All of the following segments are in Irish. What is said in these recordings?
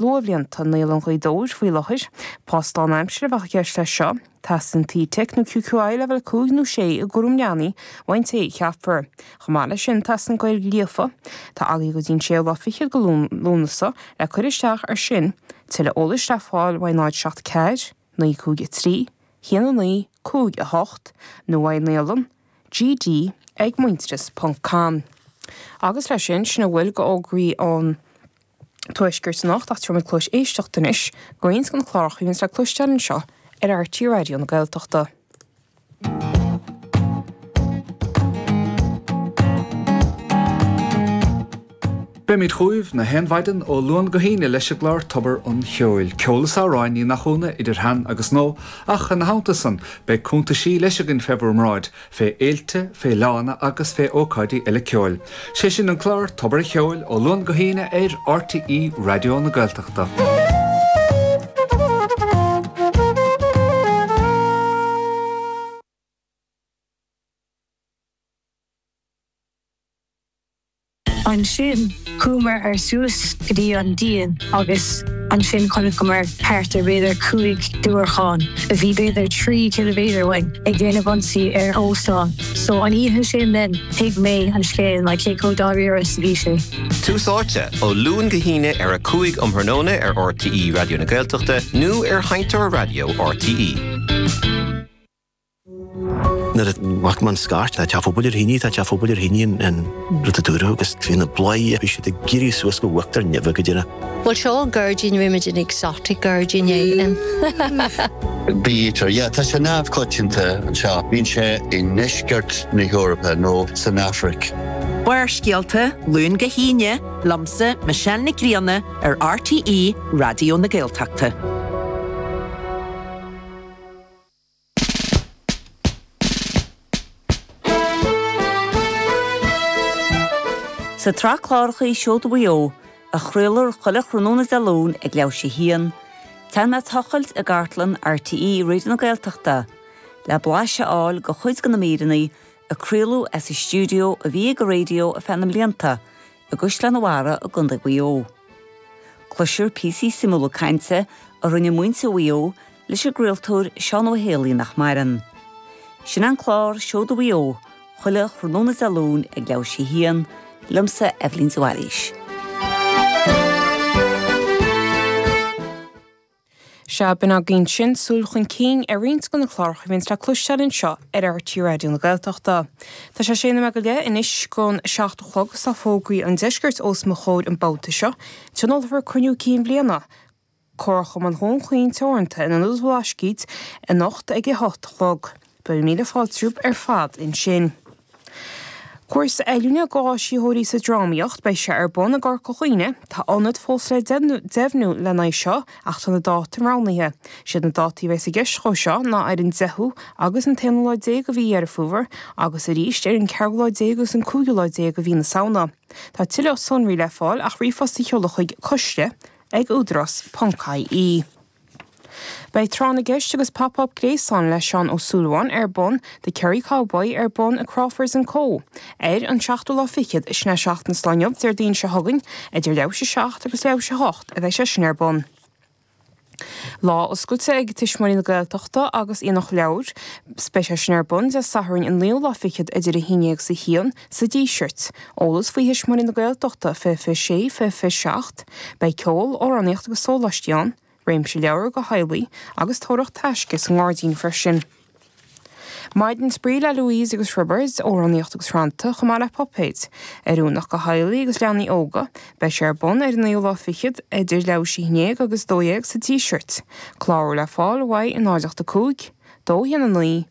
luathbhlianta Naíolann Ghaoth Dobhair faoi láthair. Post lán-aimsire a bheadh i gceist leis seo. Teastaíonn FETAC nó QQI leibhéal 5 nó 6 i gCúram Leanaí, uaidh an té a cheapfar. Chomh maith leis sin, teastaíonn Gaeilge líofa. Tá agaibh go dtí an séú lá fichead de Lúnasa le cur isteach ar sin. Tuilleadh eolais le fáil uaidh 07 4 9 5 3 1 9 5 8 nó uaidh Naíolann GD ag muintearas ponc com. Agus leis sin, sin a bhfuil de fhógraí ón. Tuaisceart anocht ach tabharfaidh muid cluais éisteachta anois do roinnt de na cláracha a bhíonns le cloisteáil anseo ar RTÉ Raidió na Gaeltachta. Beimid chugaibh nach aon mhaidin ó Luan go hAoine leis an gclár Tobar an Cheoil. Ceol is amhráin, ní nach ionadh, idir shean agus nua, ach ina theannta san, beidh cúntaisí leis againn fé bhur mbráid, fé fhéilte, fé fhleánna agus fé ócáidí eile ceoil. Sé sin an clár Tobar a' Cheoil ó Luan go hAoine ar R.T.E. Raidió na Gaeltachta. Ansin chuamar ar suas go dtí an díon agus ansin chonaiceamar thart ar b'fhéidir cúig diúracháin a bhí b'fhéidir trí chiliméadar uainn ag déanamh ionsaí ar óstán. So an oíche sin then thuig mé an scéal like cé chomh dáiríre is a bhí sé. Tús Áite, ó Luan go hAoine ar a cúig um thráthnóna ar RTÉ Raidió na Gaeltachta nó ar sheinnteoir raidió RTÉ. Nuair a mhothaigh mé an scairt, tá teach an phobail ar thine, tá teach an phobail ar thine an rud a dúradh agus bhí na bladhairí, bhí siad ag éirí suas go huachtar nimhe go dtí na. Bhuel seo an gairdín bhí muid in exotic gairdín éigin. Bee-eater, yeah, tá sé neamhchoitianta anseo. Bíonn sé i ndeisceart na hEorpa nó san Afraic. Barrscéalta, Luan go hAoine, liomsa, Michelle Nic Grianna, ar RTÉ Raidió na Gaeltachta. Sa tsraith cláracha Seoda Mhaigh Eo, a chraolfar chuile thráthnóna Dé Luain ag leathuair tar éis a haon, téann mé ag tochailt i gcartlann RTÉ Raidió na Gaeltachta le blais a fháil de chuid de na míreanna a craoladh as an stiúideo a bhí ag an raidió ar feadh na mblianta i gCaisleán an Bharraigh i gContae Mhaigh Eo. Cloisfear píosaí suimiúla cainte a rinne muintir Mhaigh Eo leis an gcraoltóir Seán Ó hÉalaí nach maireann. Sin an clár Seoda Mhaigh Eo chuile thráthnóna Dé Luain ag leathuair tar éis a haon, liomsa, Eibhlín de Bhailís. Sea, b'in againn sin, súil chun cinn ar roinnt de na cláracha a bhíonns le cloisteáil anseo ar RTÉ Raidió na Gaeltachta. Tá sé sé nóiméad go leith anois gon seacht a chlog is tá fógraí an deiscirt os mo chomhair an babhta seo, tionólfar Cruinniú Cinn Bhliana, Comharchumann Dhún Chaoin Teoranta in Ionad an Bhlascaoid anocht ag a hocht a chlog. Beidh míle fáilte romhaibh ar fad ansin. Cúrsa oiliúna do áisitheoirí sa drámaíocht, beidh sé ar bun i gCorca Dhuibhne. Tá ionad fós le deimhniú lena aghaidh seo ach tá na dáta roghnaithe. Siad na dátaí a bheas i gceist dhó seo ná ar an deichiú agus an t-aonú lá déag de mhí Dheireadh Fómhair agus arís ar an ceathrú lá déag agus an cúigiú lá déag de mhí na Samhna. Tá tuilleadh sonraí le fáil ach ríomhphost a sheoladh chuig, Coiste na. ag Údarás ponc IE. Beidh Tráth na gCeist agus Pop Up Gréasáin le Seán Ó Súilleabháin ar bun, The Kerry Cowboy ar bun i Crawfords and Co. ar an seachtú lá fichead sin é seachtain is an lá inniu, Déardaoin seo chugainn, idir leathuair tar éis a seacht agus leathuair tar éis a hocht a bheidh sé sin ar bun. Lá Oscailte ag Tuismitheoirí na Gaeltachta agus Aonach Leabhar. Beidh sé sin ar bun Dé Sathairn an naoú lá fichead idir a haon dhéag is a haon. sa Díseart, eolas faoi Thuismitheoirí na Gaeltachta, fiche fiche sé, fiche fiche seacht. Beidh ceol, amhránaíocht agus sóláistí ann, réimse leabhar go theaghlaigh agus tóraíocht taisce sa ngáirdín freisin. Maidin spraoi le Louise agus Roibeard, amhránaíocht agus rannta, chomh maith le puipéid. Oiriúnach go theaghlaigh agus leanaí óga. Beidh sé ar bun ar an naoú lá fichead, idir leathuair tar éis a haon dhéag agus a dó dhéag, sa Díseart. Clárú le fáil uaidh 0 8 5, 2 1 9,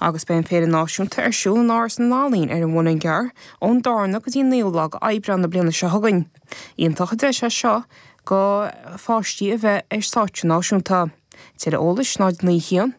Agus beidh an Féile Náisiúnta ar siúl in Áras na nEalaíon ar an Mhuileann gCearr ón darna go dtí an naoú lá go Aibreán na bliana seo chugainn. Iontach an deis é seo go pháistí a bheith ar stáitse náisiúnta. Tuilleadh eolais 0901 552 422.